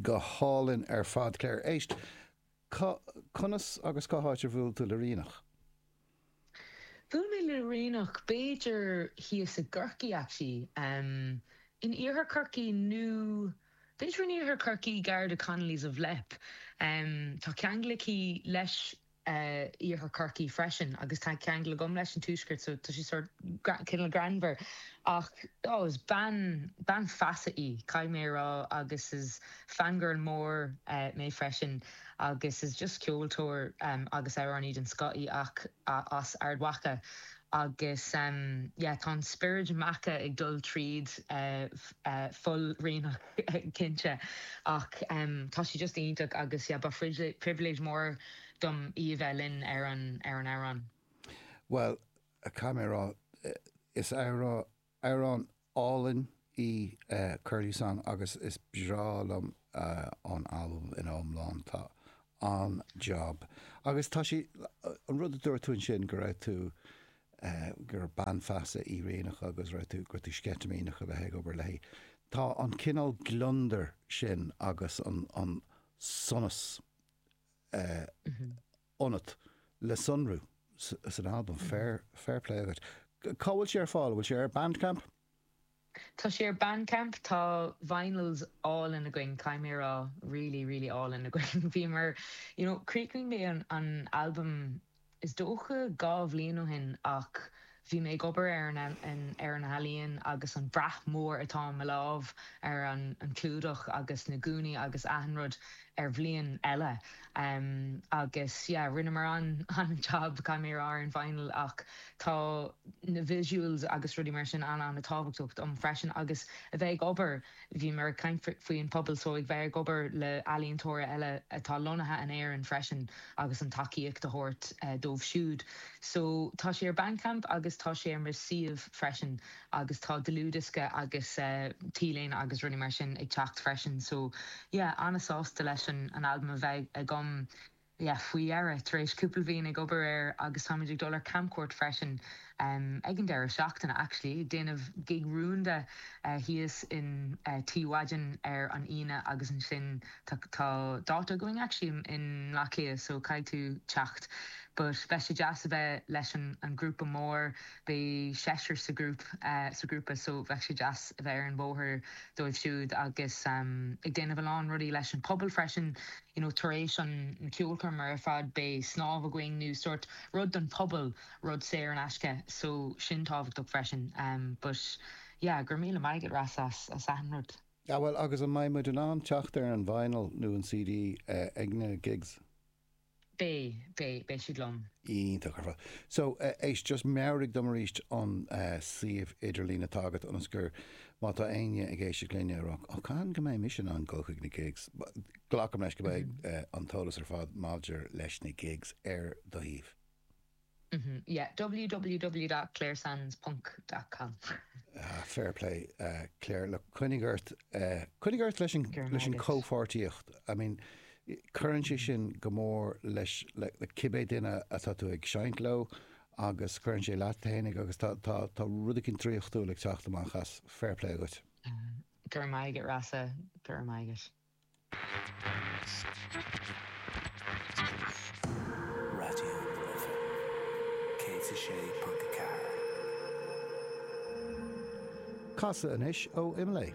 Go hálainn ar fad. Clare, éist! Cá, conas agus cá háit ar bhuail tú le Ríonach? Bhuail mé le Ríonach b'fhéidir thíos i gCorcaigh actually, in iarthar Chorcaí nó b'fhéidir in iarthar Chorcaí, gar do Connolly's of Leap. Tá ceangal aici leis Iarthar Chorcaí freisin agus tá ceangal agam leis an tuaisceart so tá sé sórt cineál greannmhar ach oh is bean, bean feasa í caithfidh mé a rá agus is fangirl mór mé freisin agus is just ceoltóir agus amhránaí den scoth í ach as Ard Mhacha agus yeah tá an spiorad Macha ag dul tríd fuil Ríonach. cinnte, ach tá sé just iontach agus yeah ba phribhléid mór dom í a bheith linn ar an amhrán. Bhuel, caithfidh mé a rá, is amhrán álainn í Curlew Song agus is breá liom an albam ina iomlán, tá an-jab. Agus tá sé, an rud a dúirt tú ansin go raibh tú gur bean feasa í Ríonach agus raibh tú, go raibh tú sceitimíneach a bheith ag obair léi. Tá an cineál gliondar sin agus an sonas ionat le sonrú san albam, féar plé agat. Cá bhfuil sé ar fáil? Bhfuil sé ar Bandcamp? Tá sé ar Bandcamp. Tá vinyls álainn againn, caithfidh mé a rá, really, really álainn againn. Bhíomar, you know, chríochnaigh mé an albam is dócha dhá bhliain ó shin ach bhí mé ag obair ar an, ar an ealaíon agus an brat mór atá i mo lámh ar an, an clúdach agus na gúnaí agus achan rud, ar bhliain eile agus yeah rinneamar an-jab caithfidh mé a rá ar an vinyl ach tá na visuals agus rudaí mar sin an-an-tábhachtach dom freisin agus a bheith ag obair, bhíomar ag caint faoin pobal so ag bheith ag obair le ealaíontóirí eile atá lonnaithe in Éirinn freisin agus an tacaíocht a thabhairt dóibh siúd so tá sé ar Bandcamp agus tá sé ar mo suíomh freisin. agus tá dlúthdhiosca agus t-léine agus rudaí mar sin ag teacht freisin so yeah an-sásta leis an albam a bheith agam yeah faoi dheireadh tar éis cúpla bhliain ag obair air agus táimid ag dul ar camcuairt freisin ag an deireadh seachtaine actually ag déanamh gig rúnda thíos in Tigh Mhadden ar an Aoine agus ansin tá tá dáta againn actually in mBleá Cliath so caithfidh tú teacht but beidh sé deas a bheith leis an an grúpa mór Beidh seisear sa ghrúpa so bheadh sé deas a bheith ar an bhóthar dóibh siúd agus ag déanamh a lán rudaí leis an bpobal freisin. You know tar éis an cheolchoirm ar fad beidh snámh againn nó sórt rud don phobal, rud saor in aisce so sin tábhachtach freisin. But yeah go raibh míle maith agat Rossa as achan rud. Ah bhuel agus an mbeidh muid in ann teacht ar an vinyl nó an CD ag na gigs? Beidh, beidh, beidh siad liom. Iontach ar fad. So, éist, just meabhraigh dom arís an suíomh idirlín atá agat ionas má tá éinne ag éisteacht linn ag rá, oh, cathain go mbeidh mise in ann dul chuig na gigs? Glacaim leis go mbeidh an t-eolas ar fad maidir leis na gigs ar do shuíomh. www.claresands.com. Ah, fair play, Clare. Look, coinnigh ort, coinnigh ort leis an, leis an gcomhpháirtíocht. I mean, cuireann sé sin go mór leis, le, le cibé duine atá tú ag seinnt leo agus cuireann sé leat fhéinig agus tá, tá, tá rud éigin draíochtúil ag teacht amach as. Fair play dhuit. Go raibh maith agat, Rossa. Go raibh maith agat. Raidió na Life 106.4. Casadh anois ó Imlé.